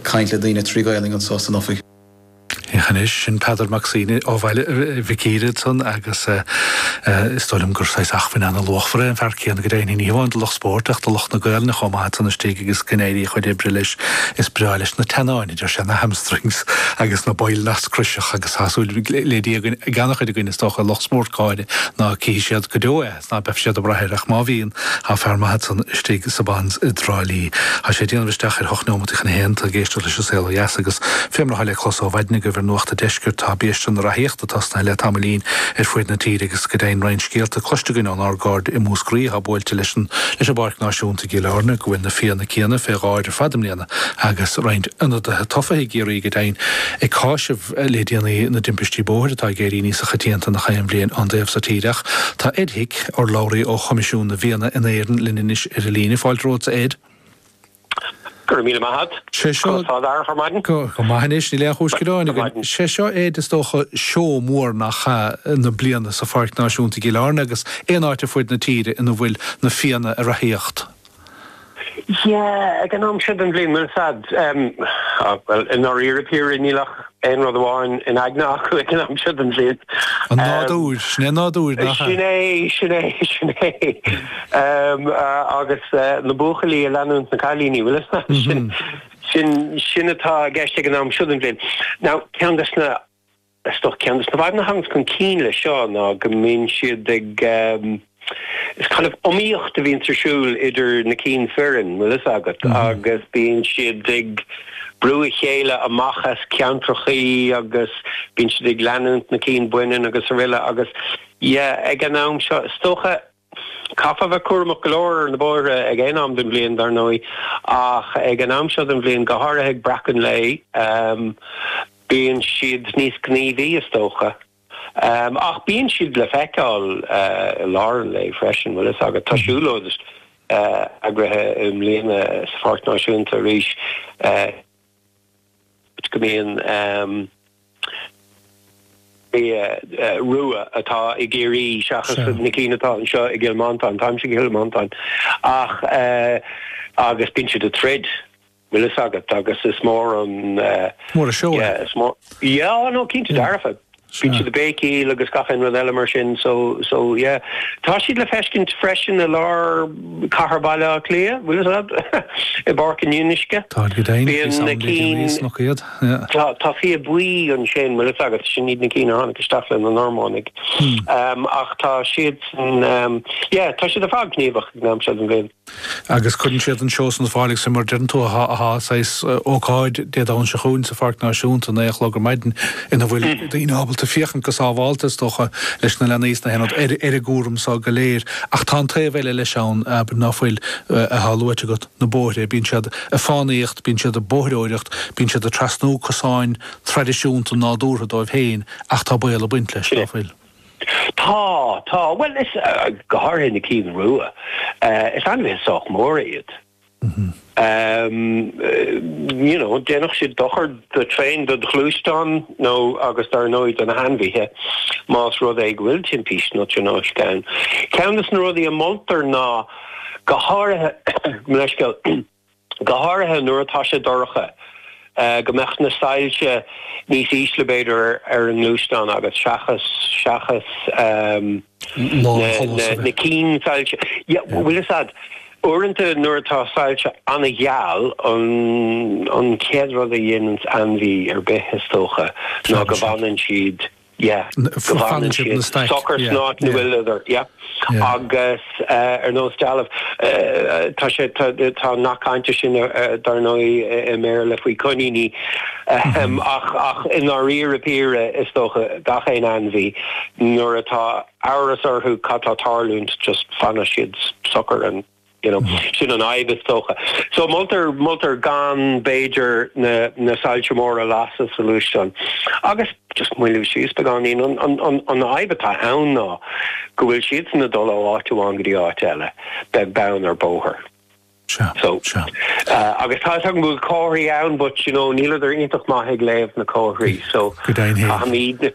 caint le daoine trí Ghaolainn anso san ofig. Anois, sin Peadar Mac Suibhne ó Bhaile Mhic Íre ansan agus is dóigh liom gur saghas achmhainn ana-luachmhar é an fear céanna go deimhin, ní hamháin do lucht spóirt ach do lucht na Gaolainne chomh maith ansan istigh agus go n-éirí a chuid oibre leis. Is breá leis na teannáin agus na hamstrings agus na baill nasc croiseach agus tá súil le Dia ag ana-chuid againn, is dócha, lucht spóirt, go háirithe, ná cífidh siad go deo é. Ná beadh siad ag braith air, ach má bhíonn, tá fear maith ansan istigh sa Bons i dTrá Lí. Tá sé ag déanamh isteach ar ocht neomataí chun a haon, tá tú ag éisteacht leis An Saol ó Dheas agus fé mar atá le clos ó mhaidin agaibh ar Nuacht a' Deiscirt tá biaiste na rathaíochta tosnaithe le tamaillín ar fuaid na tíre agus go deimhin roinnt scéalta cloiste againn ón ár gcairde i Múscraí atá buailte leis an bPáirc Náisiúnta i gCill Airne go bhfuil na fianna céanna fé dháir ar fad i mbliana agus roinnt ionadaithe tofa i gCiarraí go deimhin ag cáiseamh le déanaí i dtaobh timpistí bóthair atá ag éirí níos choitianta ná aon bhliain dá raibh sa tír ach tá Ed Hick, urlabhraí ó Choimisiún na bhFianna in Éirinn linn anois ar an líne. Fáilte romhat, a Ed. Go raibh míle maith a't. Conas tá tú ar maidin? Go maith anois, níl aon chúis gearáin againn. Sé seo Ed is dócha seó mór nach ea na bliana sa Pháirc Náisiúnta i gCill Airne agus aon áit ar fuaid na tíre ina bhfuil na fianna ag rathaíocht? Yeah, ag an am seo den bhliain, bhuel is ea, em, ah, bhuel, i ndáiríre píre níl ach aon rud amháin in aigne acu ag an am seo den bhliain. Em, an nádúr, sin é an nádúr, nach ea? sin é, sin é, sin é. Em, ah, agus eh, na buachaillí ag leanúint na cailíní, bhuel, is ea, sin, sin, sin atá i gceist ag an am seo den bhliain. Now, ceann dos na, Is dócha ceann dos na fadhbanna a thaganns chun cinn leis seo ná go mbíonn siad ag, is kind of iomaíocht a bhíonns ar siúl idir na cinn fireann, bhfuil fhios agat, agus bíonn siad ag brú a chéile amach as ceantrachaí agus bíonn siad ag leanúint na cinn baineann agus aroile agus yeah ag an am seo is dócha, Chaithfeá bheith cúramach go leor ar na bóithre ag aon am den bhliain, dar ndóigh, ach ag an am seo den bhliain, go háirithe ag breacadh an lae, bíonn siad níos gníomhaí, is dócha. Ach bíonn siad le feiceáil i lár an lae freisin, bhfuil fhios agat. Agus tá siúlóid eagraithe i mbliana sa Pháirc Náisiúnta arís. go mbíonn fia rua atá i gCiarraí seachas na cinn atá anseo i gCill Mhantáin. Táimse i gCill Mhantáin ach agus bíonn siad ag troid bhfuil fhios agat agus is mór an Mór an seó é. Iá nó cinnte dearfa. Bíonn siad ag béicíl agus gach aon rud eile mar sin so so yeah. Tá siad le feiscint freisin i lár cathair Bhaile Átha Cliath, bhfuil fhios a'd? I bPáirc an Fhionnuisce. Táid go deimhin, Bíonn físeáin ag daoine arís nach iad? Yeah. Tá tá fia buí ansin bhfuil fhios agat, sin iad na cinn a tháinig isteach le na Normánaigh. Ach tá siadsan yeah tá siad ar fad gníomhach ag an am seo den bhliain. agus cuireann siad an seó san ar fáil agus fé mar a déarann tú tá saghas ócáid Dé Domhnaigh seo chugainn sa Pháirc Náisiúnta, naoi a chlog ar maidin, ina bhfuil daoine ábalta féachaint go sábháilte, is dócha, leis na leanaí is na haonaid, ar an gcúram seo go léir. Ach tá an taobh eile leis ann, abair, ná fuil, atá luaite agat, na bóithre. Bíonn siad ag fánaíocht, bíonn siad ag bóithreoireacht, bíonn siad ag trasnú cosáin traidisiúnta nádúrtha dóibh féin, ach tá baol ag baint leis, ná fuil? Tá, tá. Bhuel is, go háirithe na cinn rua, is ainmhithe sách móra iad. You know, dhéanfadh siad dochar do thraein, do do ghluaisteán nó agus dar ndóigh do na hainmhithe más rud é go bhfuil timpiste nó tionóisc ann. Ceann de na rudaí a mholtar ná, go háirithe, mo leithscéal, go háirithe nuair atá sé dorcha, go mbeadh na soilse níos ísle b'fhéidir ar an ngluaisteán agat seachas seachas na cinn soilse a bhfuil, is ea, uaireanta nuair atá soilse an-gheal an an chéad rud a dhéananns ainmhí ar bith is dócha ná go bhfanann siad Yeah. Go bhfanann siad socair san áit ina bhfuil siad ar, yeah. Agus ar nós dealbh, tá sé, tá an nath cainte sin dar ndóigh i mBéarla faoi choiníní, ach i ndáiríre píre is dócha gach aon ainmhí, nuair atá amhras orthu cad tá tarlúint, just fanann siad socair ann. You know, sin an fhadhb is dócha. So moltar, moltar gan, b'fhéidir, na, na soilse móra a lasadh sa ghluaisteán. Agus just moilliú síos, beagáinín. An, an, an, an fhadhb atá ann ná go bhfuil siadsan ag dul ó áit amháin go dtí áit eile, beag beann ar bóthar. Sea, So, sea. eh, agus tá fhios agam go bhfuil comharthaí ann, but, you know, níl siad iontach maith ag léamh na comharthaí. So, Go deimhin féin. caithfimid,